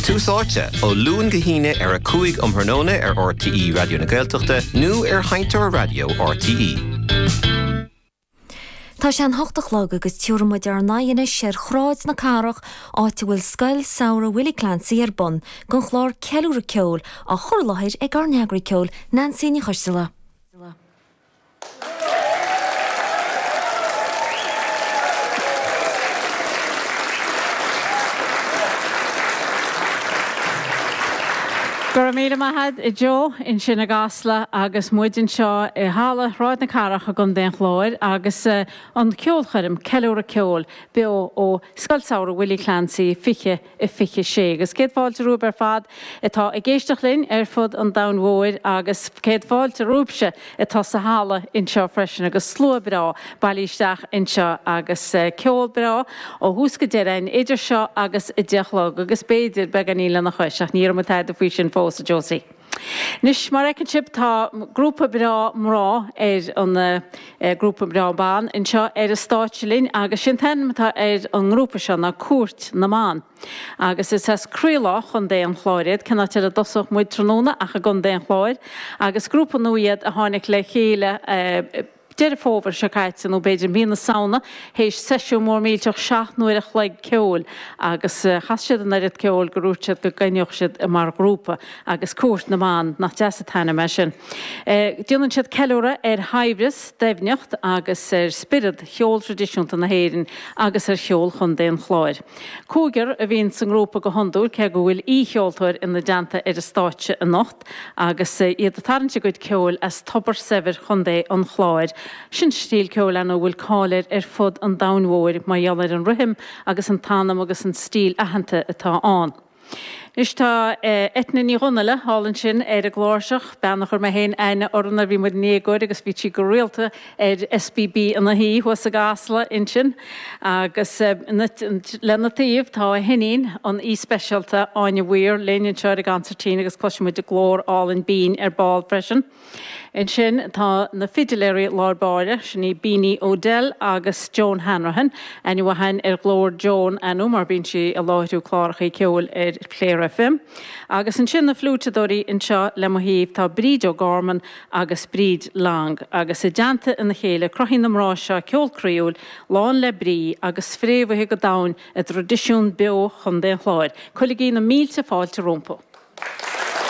Tús Áite, Ó Luan go hAoine ar 5 um thráthnóna ar RTÉ Raidió na Gaeltachta nó ar Sheinnteoir Raidió RTÉ. Tá sé an ocht a chlog agus tiubhra muid ár n-aghaidh anois ar Shráid na Cathrach, áit a bhfuil Scoil Samhraidh Willie Clancy ar bun gon chlár Ceiliúradh Ceoil, á chur i láthair ag ár n-eagraí ceoil Neansaí Ní Choisdealbha. Go raibh míle maith a'd a Joe ansin i gCasla agus muid anseo i halla Shráid na Cathrach i gContae an Chláir agus an ceolchoirm, Ceiliúradh Ceoil, beo ó Scoil Samhraidh Willie Clancy 20, i 26. Agus céad fáilte romhaibh ar fad atá ag éisteacht linn ar fud an domhain mhóir agus céad fáilte romhaibhse atá sa halla inseo freisin agus slua breá bailí isteach anseo agus ceol breá ó thús go deireadh idir seo agus a deich a chlog agus b'fhéidir beagáinín lena chois ach níl muid ag rá tada faoi sin fós, a Josie. Anois, mar fheiceann sibh, tá grúpa breá mná ar an, eh, grúpa breá ban anseo ar an stáitse linn agus sin t-ainm atá ar an ngrúpa seo ná Cúirt na mBan. Agus is as croílár Chontae an Chláir iad, cén áit ar a dtosódh muid tráthnóna ach i gContae an Chláir, agus grúpa nua iad a tháinig le chéile, eh, Deireadh Fómhair seo caite, nó b'fhéidir mí na Samhna, théis seisiún mór millteach seacht n-uaire a chloig ceoil, agus chas siad an oiread ceoil gur dhúirt siad go gcoinneodh siad i mar ghrúpa, agus Cúirt na mBan, nach deas a t-ainm é sin? déanann siad ceiliúradh ar shaibhreas, doimhneacht agus ar spiorad cheol tradisiúnta na hÉireann agus ar cheol Chontae an Chláir. Cúigear a bhíonn sa ngrúpa go hiondúil, cé go bhfuil aoi-cheoltóir ina dteannta ar an stáitse anocht. Agus iad a tarraingt a gcuid ceoil as tobar saibhir Chontae an Chláir. Sin stíl ceoil ann a bhfuil cáil air ar fud an domhain mhóir mar gheall ar an rithim agus an t-anam agus an stíl aitheanta atá ann. Anois tá Eithne Ní Dhonaile ann ansin ar an gcláirseach, bean a chuir mé féin aithne uirthi nuair bhí muid inár ngasúir agus bhíodh sí go rialta ar SBB ina shuí thuas i gCasla, ansin, agus lena taobh tá a hiníon, an aoi speisialta, Áine Mhaoir, linn anseo ar an gconsairtín agus cloisfidh muid a glór álainn binn ar ball freisin. Ansin tá na fidiléirí i lár báire, sin í Beanie Odell agus Joan Hanrahan, aithne mhaith againn ar ghlór Joan ar ndóigh mar bíonn sí ag láithriú clárachaí ceoil ar Clare FM. Agus ansin na fliúiteadóirí, anseo le mo thaobh tá Bríd O'Gorman agus Bríd Long, agus i dteannta a chéile cruthaíonn na mná seo ceol croíúil, lán le brí agus fréamhaithe go domhain i dtraidisiún beo Chontae an Chláir. Cuirigí na mílte fáilte rompu.